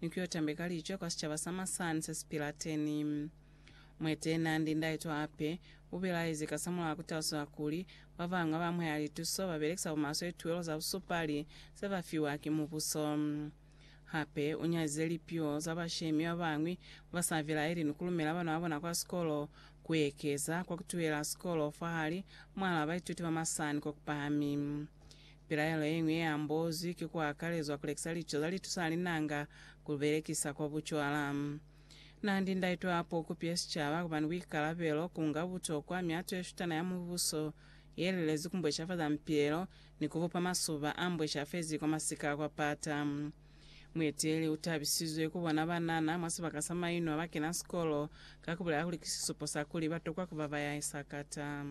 ni ku yo tambeka lico kwa sicaba sa masani se si pila teni. Mueteeli naa ndi ndahe to hape, u bilahezi kasamulaho ku talusa kuli, Ba bañwi ba amuhela lituso ba belekisa bumaswe lituwelo za busupali se ba fiwa ki mubuso. Hape u nyalize lipiho za bashemi ba bañwi ba ba sa bilaeli ni ku lumela bana ba bona kwa sikolo, ku ekeza kwa ku tuhela sikolo fahali mwahal'a baituti ba masani ko ku pahami. Pilaelo ye ñwi ye ambozwi ki ku akalezwa ku lekisa lico za litusa ha linanga ku li belekisa kwa bucwala. Naa ndi ndaitwa hape u kupile sicaba ku ba ni buikalabelo, ku nga butokwa mihato ye shutana ya Mubuso ye lilezi ku mbweshafaza mipilelo ni ku bupa masuba a mbweshafezi kwa masika a kwa pata. Mueteleli u tabisizwe ku bona banana mwa sibaka sa mainwa ba kena sikolo ka ku bulela kuli ki sisupo sa kuli ba tokwa ku ba ba ya sakata.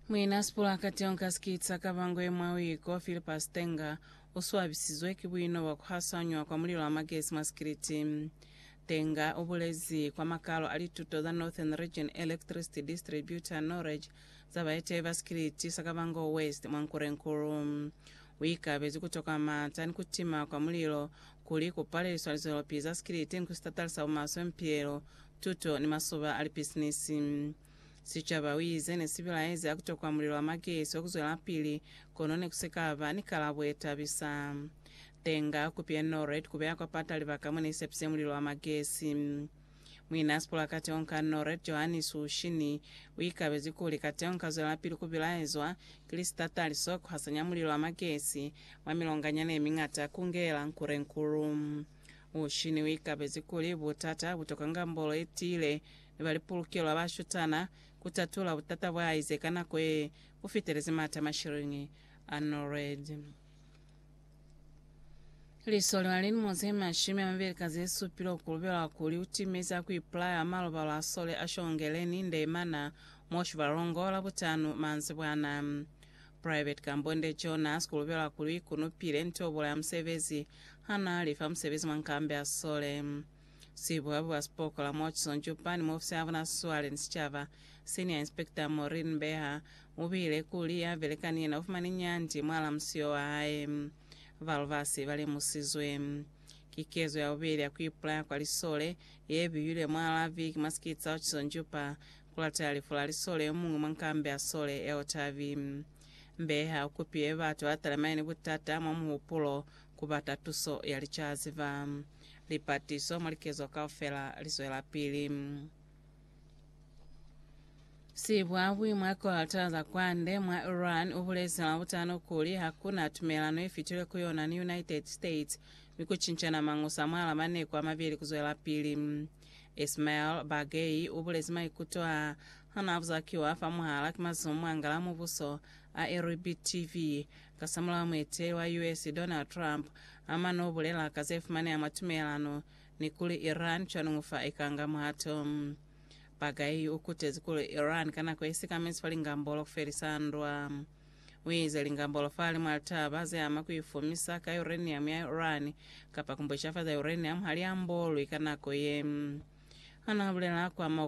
Muina Sipulakati o nka sikitsa ka bangwe mwa uiko, Philippa Stenger, u swabisizwe ki buino bwa ku hasanywa kwa mulilo wa magesi mwa sikiliti. Stenger u bulezi kwa makalo a lituto za Northern Region Electricity Distributor, NOREG, za baeteyi ba sikiliti sa Kavango West mwa Nkurenkuru. U ikabezi ku tokwa mata ni ku tima kwa mulilo kuli ku paleliswa lizwelopizi za sikiliti ni ku sitatalisa bumaswe, mipilelo, tuto ni masoba a lipisinisi. Sicaba, u ize, ne si bilaezi ha ku tokwa mulilo wa makeso ku zwelapili, kono ne ku si ka ba ni kalabo ye tabisa. Tenga kupi ye Norred ku beya kwa pata libaka mo ne i sepise mulilo wa magesi. Muin'a sipolakati o nka Norred, Johanni Suushini, u ikabezi kuli, Kateho nka zwelapili ku bilaezwa ki lisitatali so ku hasanya mulilo wa magesi mwa milonganyana ye miñata ku ngela Nkurenkulu. Uushini u ikabezi kuli, Butata bu tokanga mbolo ye tiile ne ba li pulukelo ya bashutana, ku tatula butata bwa ize ka nako ye bu fitelezi mata mashilingi a Norwed. Liso li na le lilimo ze mashumi a mabeli ka ze supile ku lubelwa kuli u timezi ha ku ipulaya ha malobalo a sole a shongele ni nde mana mwa Shivhalongo Labutanu manzibwana. Private Kambonde Jonas ku lubelwa kuli u ikunupile nto bulaya musebezi ha na li fa musebezi mwa nkambi ya sole. Sibuabu ba Sipokola Murchison Juppa ni muofisi ya bona swale ni sicaba, Senior Inspector Maureen Mbeha, u buile kuli ya belekani yena u fumani nyandi mwal'a musio wa hae. Ba lubasi ba lemusizwe. Ki kezo ya bubeli ya ku ipulaya kwa lisole ye biyilwe mwal'a viki mwa sikiti sa Hutchison Juppa ku latelela lifu la lisole yo muñwi mwa nkambi ya sole ya Otavi. Mbeha u kupile batu ba talemani ni butata mwa muhupulo ku bata tuso ya licaziba. Lipatiso mwa likezo kaufela li zwelapili. Sibwabwi mwa Quarter za Kwande mwa Iran ubulezi Labutano kuli hakuna tumelano ifitilwe ku yona ni United States mi kucincana mangusa mwala maneku amabili kuzwelapili. Ismail Baghei ubulezi maikuto a hana abuzakiwa fa muhala ki mazumu a ngala mubuso a Irib TV Kasamulaho mueteleli wa US Donald Trump amana ubulela ka zefumaneha mwa tumelelano ni kuli Iran cwanungu fa ikanga muhato. Baghai ukutezi kuli Iran ka nako isikamezi fa lingambolo kufelisa ndwa. Uize lingambolo fahali mwa litaba zeama kuifumisa ka uranium ya Iran kapa kumbwecafaza uranium haliambolwi ka nako ye. Hanaha bulela kuama